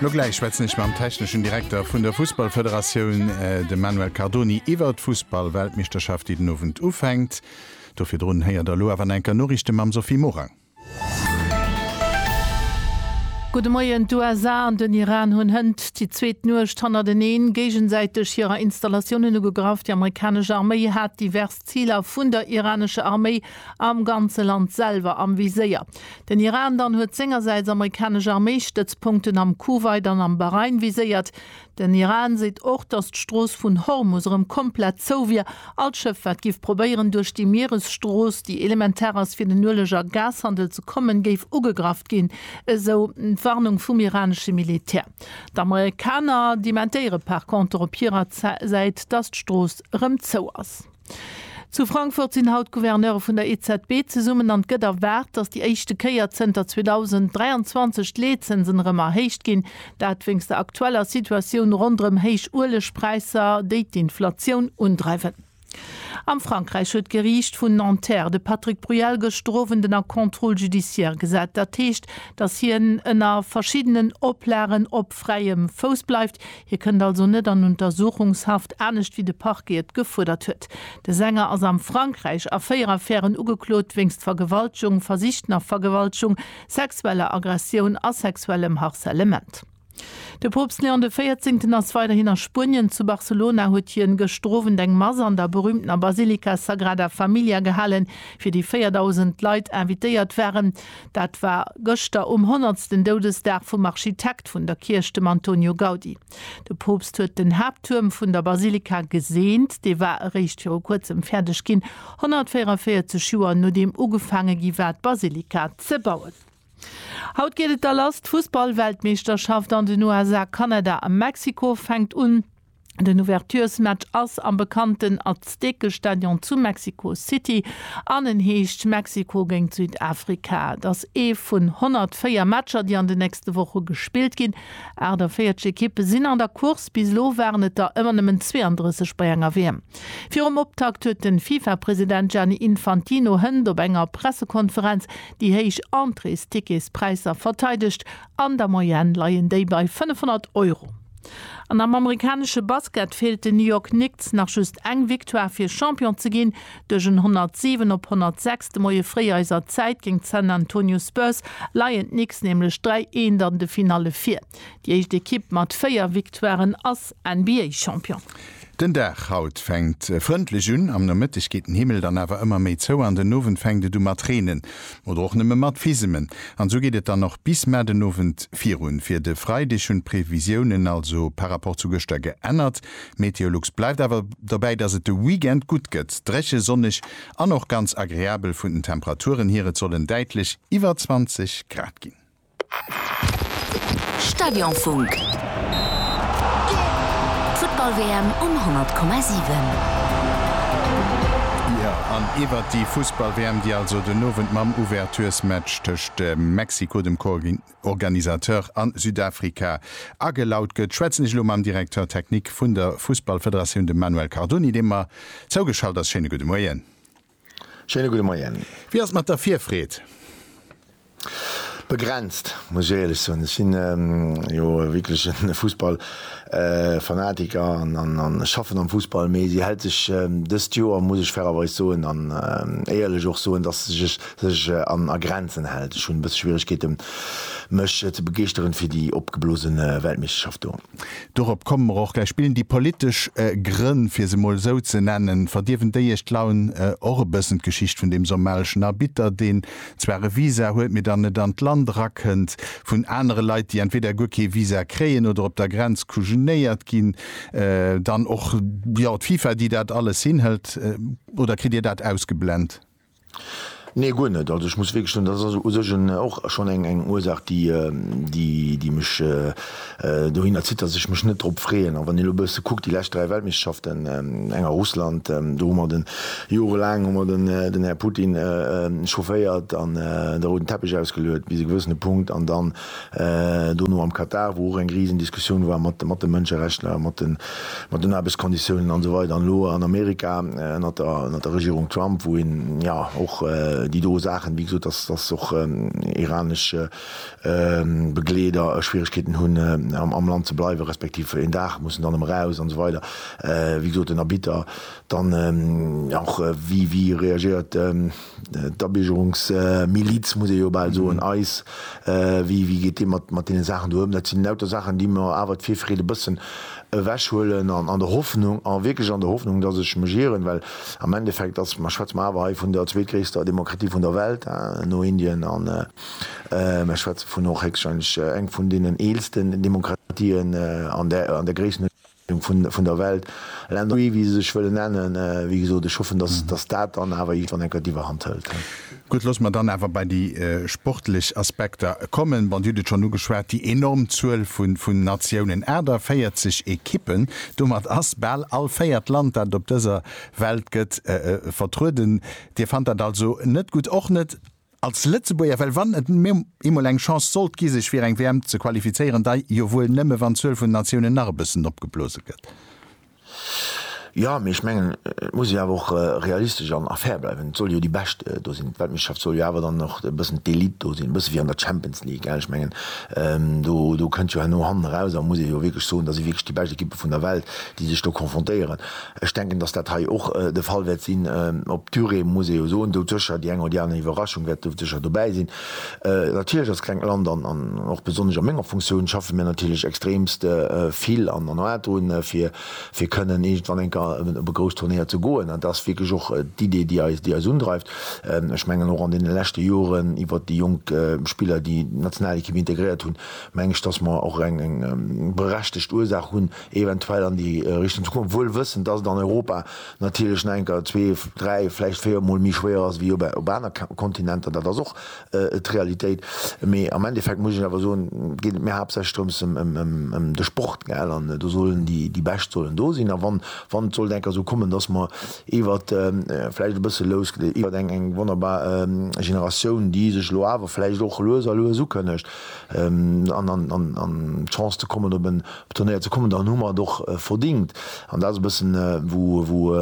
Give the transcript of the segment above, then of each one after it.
Lo gläich schwätzen ech mam techneschen Direkter vun der Fussballfederatioun, dem Manuel Cardoni, iwwert d'Fussballweltmeeschterschaft, déi den Owend ufänkt. Do virdrun héiert der elo awer an enker Noriichte mam Sophie Morang. Gudde Moien, D'USA an den Iran hunn hënt déi zweet Nuecht hannerteneen géigesäiteg hirer Installatiounen ugegraff. Déi amerikanesch Arméi hat divers Ziler vun der iranescher Arméi am ganze Land selwer am Viséier. Den Iran dann huet sengersäits amerikanesch Arméistëtzpunkten am Kuwait an am Bahrain viséiert. Den Iran seet och, datt d'Strooss vun Hormus erëm komplett zou wier. All Schëff, wat géif probéieren, duerch déi Mieresstrooss, déi elementar ass fir den Ueleg a Gashandel ze kommen, géif ugegraff ginn, esou d'Warnung vum iranesche Militär. D'Amerikaner dementéiere par conter op hirer Säit, datt d'Strooss erëm zou ass. Zu Frankfurt sinn haut d'Gouverneure vun der EZB zesummen an et gëtt erwaart, datt déi éischte Kéier zënter 2023 d'Leetzënsen erëm erhéicht ginn. Dat wéinst der aktueller Situatioun ronderëm héich Uelegpräisser, déi d'Inflatioun undreiwen. Am Frankräich huet d'Geriicht vun Nanterre de Patrick Bruyel gëschter Owend ënner Contrôle judiciaire gesat. Dat heescht, datt hien ënner verschiddenen Oplagen op fräiem Fouss bleift. Hie kënnt also net an Untersuchungshaft, anescht wéi de Parquet et gefuerdert huet. De Sänger ass am Frankräich a véier Affären ugeklot, wéinst Vergewaltegung, Versicht nach Vergewaltegung, sexueller Aggressioun a sexuellem Harcèlement. De Poopst Léon de Véierzéngten ass weiderhin a Spuenien. Zu Barcelona huet hien gëschter Owend eng Mass an der berüümtener Basilika Sagrada Familia gehalen, fir déi 4.000 Leit invitéiert waren. Dat war gëschter um honnertsten Doudesdag vum Architekt. Architekt vun der Kierch, dem Antonio Gaudi. De Poopst huet den Haapttuerm vun der Basilika geseent. Dee war eréischt viru kuerzem fäerdeg ginn, 144 Joer nodeem ugefaange gi war, d'Basilika ze bauen. Haut geet et da lass, D'Fussball-Weltmeeschterschaft an den USA, Kanada a Mexiko fänkt un. Den Ouverturesmatch ass am bekannten Azteke Stadion zu Mexico City an en heescht Mexiko géint Südafrika. Et ass ee vun 104 Matcher, déi an de nächste Woche gespillt ginn. 48 Ekippe sinn an der Course, bis elo waren et der ëmmer nëmmen 32 bei enger WM. Virum Optakt huet de FIFA-President Gianni Infantino Hënt op enger Pressekonferenz déi héich Entréesticketspräisser verteidegt An der Moyenne leien déi bei 500 Euro. An am amerikanesche Basket feelt den New York Knicks nach just eng Victoire fir Champion ze ginn. Duerch en 107 op 106 de Moie fréi eiser Zäit géint d'San Antonio Spurs leien d'Knicks nämlech 3 Eent an de Finalle vir. Déi éischt Ekipp mat 4 Victoiren ass NBA-Champion. Den Dag haut fänkt frëndlech un, am Nomëtteg geet den Himmel dann awer ëmmer méi zou an den Owend fänkt et u mat reenen oder och nëmme mat Fisemen an esou geet et dann och bis mar den Owend virun. Fir de Freideg hunn d'Previsiounen also par rapport zu gëschter geännert. Meteolux bleift awer dobäi, dass et de Weekend gutt gëtt, dréche, sonneg an och ganz agreabel vun den Temperaturen hier, et sollen däitlech iwwer 20 Grad ginn. Stadionfunk. D'Futtball-WM um 100,7. Jo, an iwwert déi Fussball-WM, déi also den Owend mam Ouvertures-Match tëscht Mexiko, dem Co-Organisateur, a Südafrika agelaut gëtt, schwätzen ech elo mam Directeur technique vun der Fussballfederatioun, dem Manuel Cardoni, dee mer zougeschalt ass. Schéine gudde Moien. Schéine gudde Moien. Wéi ass et mat der Virfreed? Begrenzt, muss ech éierlech soen. Ech sinn jo e wierklechen Fussballfanatiker an ech schaffen am Fussball, mee si hält sech dëst Joer, muss ech fairerweis soen an éierlech och soen, dass se sech a Grenzen hält. Ech hunn e bësse Schwieregkeete mech ze begeeschteren fir déi opgeblose Weltmeeschterschaft do. Dorop komme mer och gläich. Spillen déi politesch Grënn, fir se mol esou ze nennen, verdierwen déi Iech d'Laun? Och e bëssen d'Geschicht vun deem somaliëschen Arbitter, deen zwar e Visa huet, mee dann net an d'Land erakënnt, vun anere Leit, déi entweder guer kee Visa kréien oder op der Grenz kujenéiert ginn, dann och, jo, d'FIFA, déi dat alles hinhëlt. Oder kritt Dir dat ausgeblent? Nee, guer net. Also ech muss wierklech soen, dat ass u sech en, och schonn eng, eng Ursaach, déi, déi, déi mech dohin erzitt, datt ech mech net drop freeën. A wann een elo e bësse kuckt, déi lescht dräi Weltmeeschterschaften, eng a Russland, do hu mer den, jorelaang hu mer den, den Här Putin chaufféiert an de rouden Teppech ausgeluet bis e gewëssene Punkt an dann dono am Katar, wou och eng riesen Diskussioun war mat de Mënscherechtler, mat den Aarbechtskonditiounen an esou weider, an elo an Amerika ënnert der Regierung Trump, wou een jo och déi do Saachen, wéi gesot, dass och iranesch Begleeder Schwieregkeeten hunn am Land ze bleiwen, respektiv een Dag mussen dann erëm eraus an esou weider, wéi gesot, den Arbitter dann och, wéi reagéiert d'Abiergerungsmiliz, muss ee jo bal soen, eis, wéi geet Dir mat deene Saachen do ëm? Dat sinn lauter Saachen, déi mer awer d'Virfreed e bëssen ewechhuelen an an der Hoffnung, a wierklech an der Hoffnung, dass ech mech ieren, well am Endeffekt ass, mä schwätze mer awer hei vun der zweetgréisster Demokratie vun der Welt, no Indien, an mer schwätze vun och héchstwahrscheinlech eng vun deenen eelsten Demokratien an der Gréissenhuecht. vun der Welt, Länner wéi se sech wëllen nennen. Wéi gesot, ech hoffen, datt dat dann awer iergendwann enker d'Iwwerhand hëlt. Gutt, loosse mer dann awer bei déi sportlech Aspekter kommen. Bon, Dir hutt et schonn ugeschwat, déi enorm Zuel vun Natiounen, 48 Ekippen. Domat ass bal all véiert Land, dat et op dëser Welt gëtt, vertrueden. Dir fannt dat also net gutt, och net Als Lëtzebuerger, well wann et eemol eng Chance sollt gi sech fir eng WM ze qualifizéieren, da jo wuel nëmme wann d'Zuel vun Natiounen nach e bëssen opgeblose gëtt. Jo, mee ech mengen, et muss ee awer och realistesch an fair bleiwen. Et soll jo déi Bescht do sinn. D'Weltmeeschterschaft soll jo awer dann och e bëssen d'Elite do sinn, e bësse wéi an der Champions League. Ech mengen, do kënnt jo herno hannen eraus a muss ee jo wierklech soen, da si wierklech déi bescht Ekippe vun der Welt, déi sech do confrontéieren. Ech denken, dass dat hei och de Fall wäert sinn. Op d'Durée muss ee jo soen, do sécher, déi eng oder déi aner Iwwerraschung wäert do sécher dobäi sinn. Natierlech als klengt Land an och besonnesch a menger Funktioun schaffe mir natierlech extremst vill an an hârt drun, fir fir kënnen iergendwann eng Kéier op e grousst Turnéier ze goen. Dat ass wierklech och d'Idee, déi eis déi eis undreift. Ech mengen och an deene leschte Joren iwwert déi jonk Spiller, déi d'Nationalekipp integréiert hunn, meng ech, dass mer och eng eng berechtegt Ursaach hunn, eventuell an déi Richtung ze goen, wuel wëssend, dass et an Europa natierlech nach enker zwee, dräi, vläicht véier Mol méi schwéier ass wéi op aner Kontinenter. Dat ass och d'Realitéit. Mee am Endeffekt muss ech awer soen, geet et mir haaptsächlech drëms ëm de Sport, gell, an do sollen déi Bescht sollen do sinn. A wann et sollt enker esou kommen, dass mer iwwert, vläicht e bësse lous, iwwert eng wonnerbar Generatioun, déi sech elo awer vläicht och lues a lues ukënnegt, an d'Chance ze kommen op en Op den Dreier ze kommen, dann hu mer et och verdingt. An dat ass e bëssen, wou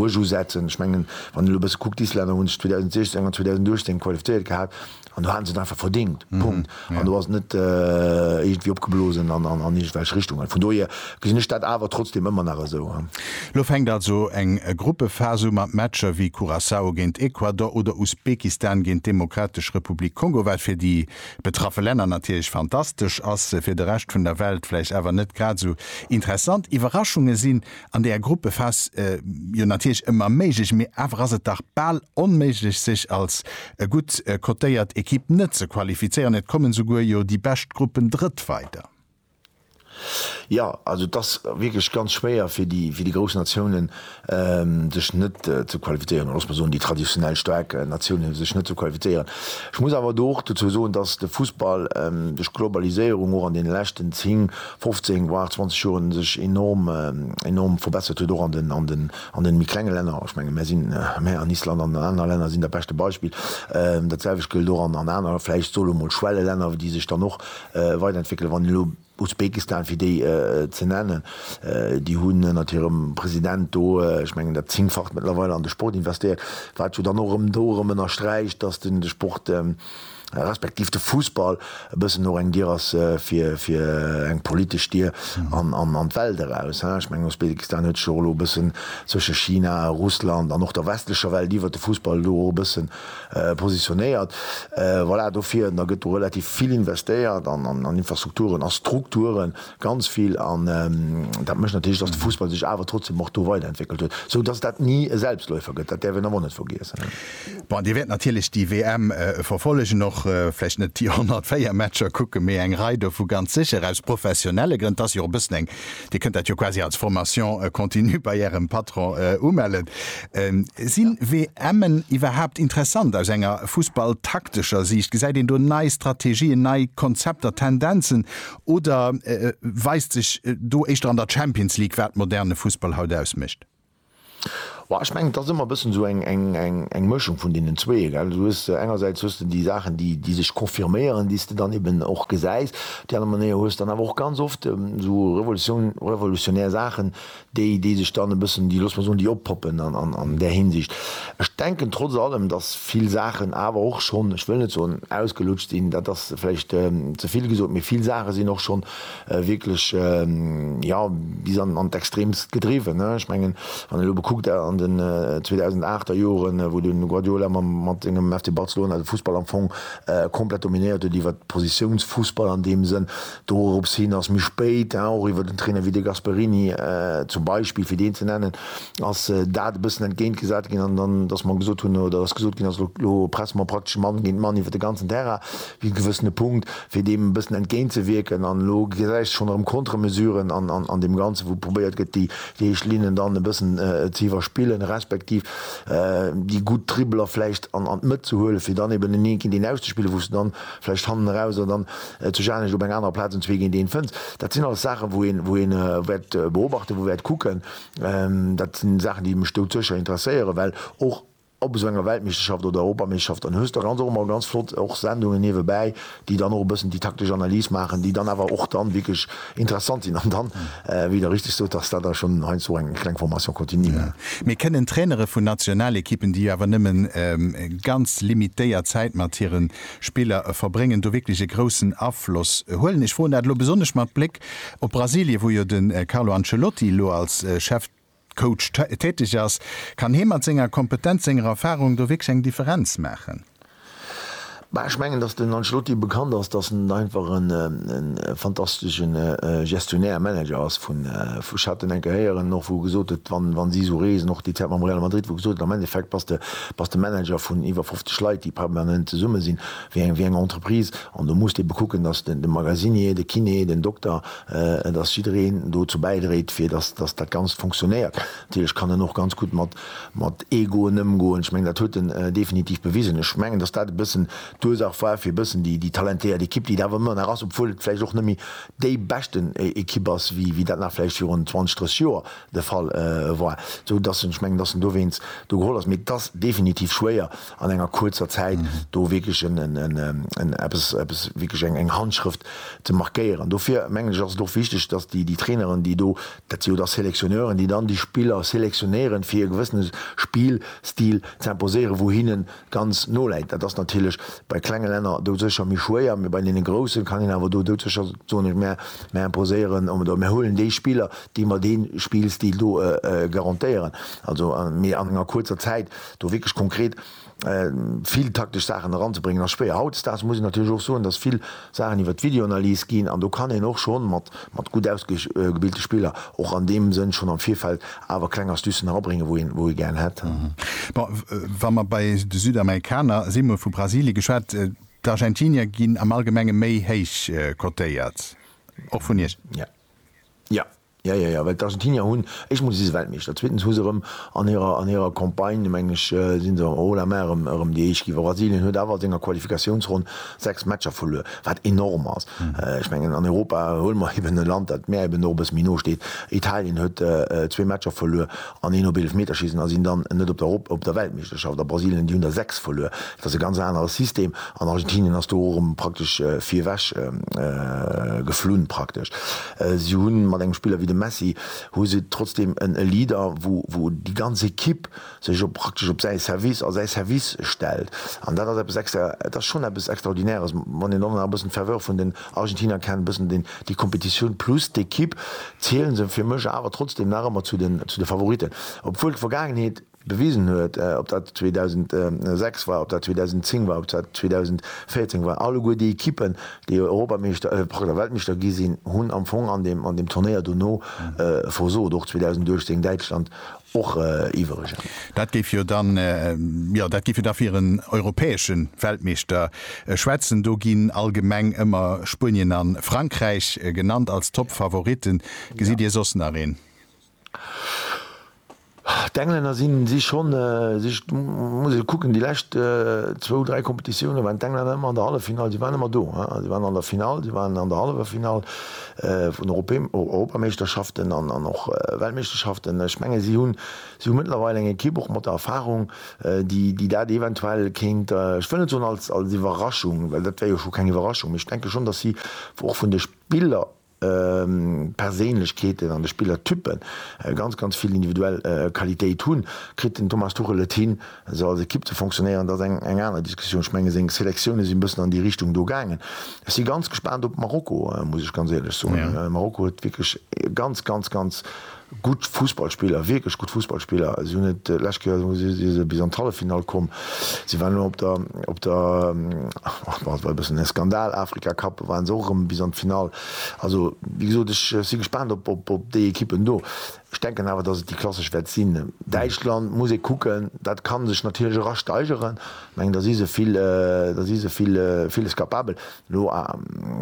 ech usetzen. Ech mengen, wann een elo e bësse kuckt, d'Islänner hu sech 2016 an 2018 qualifizéiert gehat an do hate se et einfach verdingt. Punkt. An do ass et net iergendwéi opgeblosen an iergendwelch Richtungen. Vun dohier gesinn ech dat awer trotzdeem ëmmer nach esou. Elo fänkt also eng Gruppephas u mat Matcher wéi Curaçao géint Ecuador oder Usbekistan géint d'Demokratesch Republik Kongo, wat fir déi betraffe Länner natierlech fantastesch ass, fir de Rescht vun der Welt vläicht awer net grad esou interessant. Iwwerraschunge sinn an där Gruppephas jo natierlech ëmmer méiglech, mee awer ass et dach bal onméiglech, sech als gutt cotéiert Ekipp net ze qualifizéieren. Et kommen souguer jo déi bescht Gruppen drëtt weider. Jo, also et ass wierklech ganz schwéier fir déi grouss Natiounen, sech net ze qualifizéieren, oder loosse mer soen, déi traditionell staark Natiounen, sech net ze qualifizéieren. Ech muss awer do och dozou soen, datt de Fussball duerch d'Globaliséierung och an deene leschten 10, 15, voire 20 Joren sech enorm, enorm verbessert huet, och an de méi klenge Länner. Ech menge, mär sinn, mär an Island an an aner Länner sinn da beschte Beispill. Dat selwecht gëllt och an aner, vläicht sot elo mol Schwellelänner, déi sech dann och Weiderentwéckele wann elo Usbekistan, fir déi ze nennen, déi hunn ënnert hirem President do, ech mengen dat Zéngfacht mëttlerweil, an de Sport investéiert, wat jo dann och erëm do erëm ënnersträicht, datt den de Sport, respektiv de Fussball e bëssen och eng Dier ass fir fir eng politesch Dier an an d'Welt eraus. Ech mengen Usbekistan huet sech och elo e bëssen zwësche China, Russland an och der westlecher Welt iwwert de Fussball do och e bëssen positionéiert. Voilà, dofir da gëtt do relativ vill investéiert an Infrastrukturen, a Strukturen, ganz vill. An dat mécht natierlech, dass de Fussball sech awer trotzdem och do weiderentwéckelt huet, sou dass dat ni e Selbstläufer gëtt. Dat däerf een awer och net vergiessen. Bon, Dir wäert natierlech déi WM verfollegen och. Vläicht net déi 104 Matcher kucken, mee eng Rei dovu ganz sécher, aus professionelle Grënn. 't ass jo och e bëssen eng Dir kënnt dat jo quasi als Formation continue bei Ärem Patron umellen. Sinn WMen iwwerhaapt interessant aus enger fussballtaktescher Siicht? Gesäit een do nei Strategien, nei Konzepter, Tendenzen? Oder weist sech do éischter an der Champions League, wat moderne Fussball haut ausmécht? Boah, ech mengen, et ass ëmmer e bëssen esou eng Mëschung vun deenen zwee, gell. Du hues, engersäits hues de déi Saachen, déi, déi sech confirméieren, déi s de dann eben och gesäis. Op déi aner Manéier hues dann awer och ganz oft esou Revolutioun, revolutionär Saachen, déi, déi sech dann e bëssen, déi, looss mer soen, déi oppoppen an där Hinsicht. Ech denken trotz allem, datt vill Saachen awer och schonn, ech wëll net soen ausgelutscht sinn, dat ass vläicht ze vill gesot, mee vill Saache sinn och schonn wierklech jo bis an d'Extreemst gedriwwen. Ech mengen, wann een elo bekuckt an den 2008 er Joren, wou den Guardiola mat sengem FC Barcelona de Fussball am Fong komplett dominéiert huet, iwwer Positiounsfussball an deem Sënn, dorobs hin ass méi spéit och iwwer en Trainer wéi de Gasperini zum Beispill, fir deen ze nennen, ass dat e bëssen entgéintgesat ginn an dann, dass mer gesot hunn oder dass gesot ginn ass, elo presse mer praktesch Mann géint Mann iwwer de ganzen Terrain bis e gewëssene Punkt. Fir deem e bëssen entgéint ze wierken, an elo gesäis de schonn erëm Contre-Mesuren an deem Ganzen, wou probéiert gëtt, déi héich Linnen dann e bëssen ze iwwerspillen, respektiv déi gutt Dribbeler vläicht an d'Mëtt ze huelen, fir dann eben en Een géint Een auszespillen, wou s de dann vläicht hannen eraus oder dann zu Scharnyrch op enger anerer Plaz en Zwee géint Een fënns. Dat sinn alles Saachen, wou een, wou een wäert beobachten, wou wäert kucken. Dat sinn Saachen, déi mech doutëscher interesséieren, well och, ob esou enger Weltmeeschterschaft oder Europameeschterschaft, dann hues de ganz och emmer ganz flott och Sendungen niewebäi, déi dann och e bëssen déi taktesch Analys maachen, déi dann awer och dann wierklech interessant sinn an dann, wéi Der richtig sot, ass dat da schonn heiansdo eng kleng Formation continue. Mee kënnen Trainere vun Nationalekippen, déi jo awer nëmme ganz limitéiert Zäit mat hire Spiller verbréngen, do wierklech e groussen Afloss huelen? Ech froen dat elo besonnesch mat Bléck op Brasilien, wou jo de Carlo Ancelotti elo als Chef. Coach täteg ass, kann hee mat senger Kompetenz, senger Erfahrung do wierklech eng Differenz maachen? Bah, ech mengen, datt den Ancelotti bekannt ass, datt en einfach e fantastesche Gestionnaire, Manager ass. Vun, ech hat en enke héieren och, wou gesot huet, wann, wa si esou reesen, och déi Zäit mam Real Madrid, wou gesot huet, am Endeffekt bass de, bass de Manager vun iwwer 50 Leit, déi permanent zesumme sinn, wéi eng, wéi eng Entreprise. An do muss de ebe kucken, datt de Magasinier, de Kiné, den Dokter, Et ass jiddereen dozou bäidréit fir dass dat Ganzt funktionéiert. Natierlech kann en och ganz gutt mat Egoen ëmgoen. Ech mengen dat huet en definitiv bewisen. Ech mengen dass dat e bëssen d'Ursach war fir e bëssen déi talentéiert Ekipp déi et awer ëmmer nach ass, obwuel et vläicht och net méi déi beschten Ekipp ass wéi dat nach vläicht virun 20, 30 Joer de Fall war, esou dass en, ech mengen dass en dowéinst do geholl ass. Mee et ass definitiv schwéier an enger kuerzer Zäit do wierklech en eppes, eppes wierklech eng, eng Handschrëft ze markéieren. Dofir, mengen ech, ass et och wichteg, datt déi, déi Traineren, déi do, dat si jo da Selectionneuren, déi dann déi Spiller selectionnéieren, fir e gewëssene Spillstil ze imposéieren, wou hinnen ganz no läit. Dat ass natierlech bei klenge Länner doudsécher méi schwéier, mee bei deene groussen kann een awer do doudsécher soen, ech, mär, mär imposéieren, oder mär huelen déi Spiller, déi mer dee Spillstil do garantéieren. Also, mee an enger kuerzer Zäit. Do wierklech konkret vill taktesch Saachen eranzebréngen ass schwéier. Hautdesdaags muss een natierlech och soen, datt vill Saachen iwwer d'Videoanalys ginn an do kann een och schonn mat gutt ausgebilte Spiller och an deem Sënn schonn am Virfeld awer kleng Astucen erabréngen, wou ee gär hätt. Bon, wa mer bei de Südamerikaner sinn, mol vu Brasilien geschwat, d'Argentinier ginn am Allgemenge méi héich cotéiert, och vun Iech? Jo. Ja, ja, ja, well d'Argentinier hunn éischtmol si se Weltmeeschter, zweetens hu se erëm an hirer an hirer Campagne, meng ech, si se haut la main erëm erëm déi Éischt ginn. A Brasilien huet awer a senger Qualifikatiounsronn sechs Matcher verluer, wat enorm ass. Ech mengen, an Europa huele mer eeben e Land, dat mär eeben och e bësse méi no steet. Italien huet zwee Matcher verluer An een op Eelefmeterschiessen ass een dann net op der Erop op der Weltmeeschterschaft. A Brasilien, déi hunn der 6 verluer. Dat ass e ganz anere System. An Argentinien ass do och erëm praktesch virwech geflunn praktesch. Si hu mat engem Spiller wéi dem Messi hu se trotzdeem en e Leader, wou wou déi ganz Ekipp sech op praktesch op säi Service, a säi Service stellt. An dat ass eppes extra, et ass schonn eppes Extraordinäres, wann een dann nach e bëssen d'Ferveur vun den. Argentinier kennen bessen den déi Competitioun plus d'Equipe zielen se fir mech awer trotzdem nach emmer zu den zu de Favoriten obwuel d'Vergaangenheet bewisen huet ob dat 2006 war ob dat 2010 war ob dat 2014 war alleguer déi Equipen déi Europameeschter oder Weltmeeschter gi sinn hunn am Fong an dem an dem Turnéier dono versot och 2018 Däitschland och iwweregen. Dat géif jo dann, jo, dat géif jo da fir en europäesche Weltmeeschter schwätzen. Do ginn allgemeng ëmmer Spuenien a Frankräich genannt als Top-Favoritten. Gesitt Dir soss nach een? D'Englänner sinn, si schonn, si, muss ech kucken, déi lescht zwou, dräi Competitiounen waren d'Englänner ëmmer an der Halleffinall. Si waren ëmmer do, si waren an der Finall, si waren an der Halleffinall. vun Europameeschterschaften an och Weltmeeschterschaften. Ech menge si hu mëttlerweil eng Ekipp, och mat der Erfarung, déi dat eventuell kéint, ech wëll net soen als Iwwerraschung, well dat wär jo scho keng Iwwerraschung, mee ech denke schonn, datt si och vun de Spillerperséinlechkeeten an de Spillertyppen ganz, ganz vill individuell Qualitéit hunn. Kritt den Thomas Tuchel et hin, se als Ekipp ze fonctionnéieren, dat ass eng aner Diskussioun. Ech menge seng Selektioune sinn e bëssen an déi Richtung do gaangen. Ech si ganz gespaant op Marokko, muss ech ganz éierlech soen. Marokko huet wierklech ganz, ganz, ganz gutt Fussballspiller, wierklech gutt Fussballspiller. Si hunn et lescht Kéier, si se bis an d'Halleffinall komm, si waren elo op der, och dat war e bëssen e Skandal, Afrika Cup, waren se och erëm bis an d'Finall. Also, wéi gesot, ech si gespaant op déi Ekippen do. Ech denken awer, dass et déi klassesch wäert sinn. Däitschland muss ee kucken. Dat ka sech natierlech era steigeren. Ech mengen, da si se vill, da si se vill, villes capabel. Elo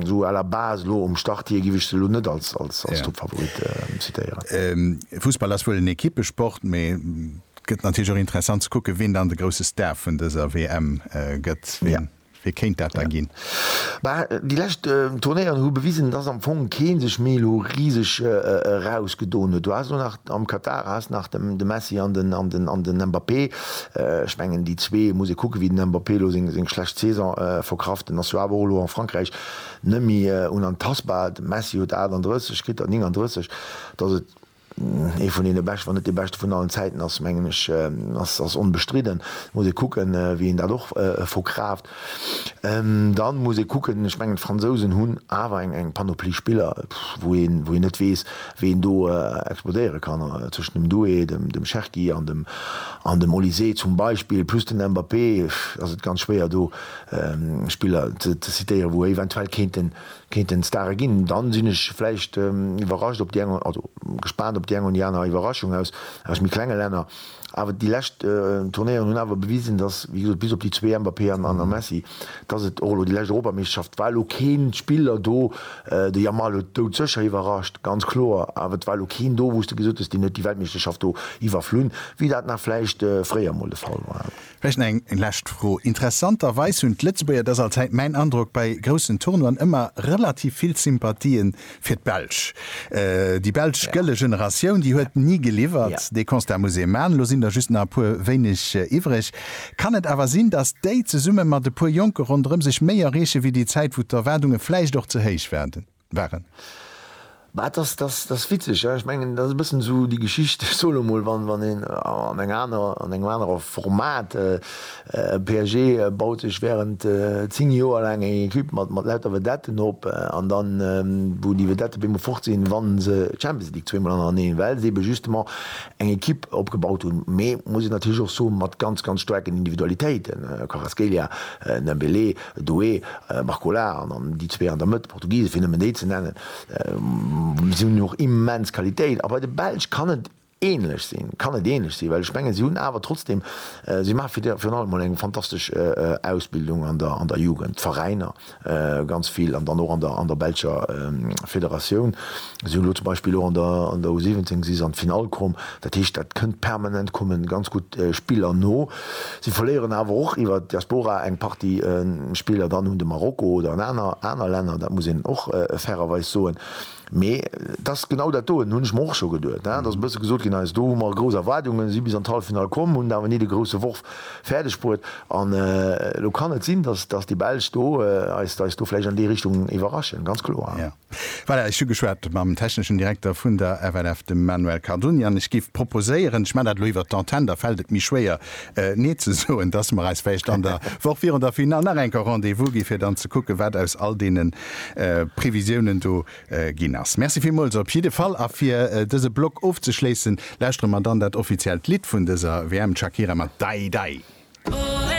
esou à la base elo um Start hir giff ech se elo net als, als, als Toppfavorit zitéieren. Fussball ass wuel en Ekippesport, mee et gëtt natierlech och interessant ze kucken, wien dann de grousse Star vun dëser WM gëtt. Wee kéint dat da ginn? Bah, déi lescht Turnéieren hu bewisen, dass am Fong kee sech méi elo riseg erausgedoen huet. Du has elo nach am Katar has nach de Messi an den Mbappé. Ech mengen, déi zwee, muss ee kucken, wéi den Mbappé elo seng schlecht Saison verkraft. Den ass jo awer och elo a Frankräich net méi unantastbar. De Messi huet 38, kritt der 39. Dass et Ee vun deene beschte, wann net dee beschte vun allen Zäiten ass, mengen ech, ass onbestridden. Muss ee kucken, wéi een dat och verkraaft. Dann muss ee kucken, ech mengen d'Fransousen hunn awer eng Panoplie Spiller, wou een net weess, wéi een do explodéiere kann. Zwëschen dem Doué, dem Cherki an dem Olysée zum Beispill, plus den Mbappé, ass et ganz schwéier do Spiller ze zitéieren, wou eventuell kéinten, kéinten Stare ginn, dann sinn ech vläicht iwwerrascht op déi eng, also gespaant op déi eng oder déi aner Iwwerraschung aus aus méi klenge Länner. Awer déi lescht Turnéieren hunn awer bewisen, dass, wéi gesot, bis op déi zwee, Mbappé an a Messi, dass et och elo déi lescht Europameeschterschaft war elo keen Spiller do, de Yamal huet doudsécher iwwerrascht, ganz kloer, awer et war elo keen do, wou s de gesot hues, deen huet déi Weltmeeschterschaft do iwwerflunn, wéi dat nach vläicht fréier emol de Fall war. Vläicht nach eng lescht Fro. Interessanterweis hunn d'Lëtzebuerger, dat ass allzäit mäin Androck, bei groussen Tournoien ëmmer relativ vill Sympathie fir d'Belsch. Déi belsch gëlle Generatioun, déi huet ni geliwwert. Dee Constat muss ee man. Elo sinn der just nach e puer wéineg iwwreg. Kann et awer sinn, datt déi zesumme mat e puer Jonke ronderëm sech méi erreeche wéi déi Zäit, wou d'Erwaardunge vläicht och ze héich waarden? Waren. Mä et ass, dat ass witzeg, ech mengen, dat ass e bëssen esou déi Geschicht, ech soen emol, wann een an enger anerer, an engem anere Format, PSG baut sech während zéng Joer laang eng Equipe mat lauter Vedetten op an da wou déi Vedette op eemol fort sinn, wann se d'Champions League zweemol hannereneen, well se ebe justement eng Equipe opgebaut hunn, mee muss een natierlech och soen, mat ganz, ganz staarken Individualitéiten, Kvaratskhelia, Dembélé, Doe, Marco Lahr, an déi zwee an der Mëtt, Portugise fir nëmmen déi ze nennen, si hunn och immens Qualitéit. A bei de Belsch kann et ähnlech sinn, kann et ähnlech sinn, well ech mengen, si hunn awer trotzdem, si maache fir virun allem emol eng fantastesch Ausbildung an der an der Jugend, d'Veräiner ganz vill an dann och an der an der belscher Federatioun. Si hunn elo zum Beispill och an der an der U17, si se an d'Finall komm. Dat heescht, dat kënnt permanent, komme ganz gutt Spiller no. Si verléieren awer och iwwer d'Diaspora eng Partie Spiller dann un de Marokko oder un aner aner Länner. Dat muss een och fairerweis soen. Mee et ass genau dat doen, hunn ech mer och scho geduet. Et ass e bësse gesot ginn, eis do hu mer grouss Erwaardungen, si bis an d'Halleffinall komm, hunn awer ni de grousse Worf fäerdeg bruet. An elo kann et sinn, datt déi Belsch do eis do vläicht an déi Richtung iwwerraschen, ganz kloer. Voilà, ech hu geschwat mam techneschen Direkter vun der FLF, dem Manuel Cardoni, an ech géif proposéieren, ech maachen dat elo iwwert d'Antenne, da fält et méi schwéier Nee ze soen, dass mer eis vläicht an der Woch virun der Final nach eng Kéier Rendez-vous ginn, fir dann ze kucken, wat aus all deene Previsiounen do ginn ass. Merci villmools op jidde Fall. A fir dëse Block ofzeschléissen, lauschtere mer dann dat offiziellt Lidd vun dëser WM, d'Shakira mat Dai Dai.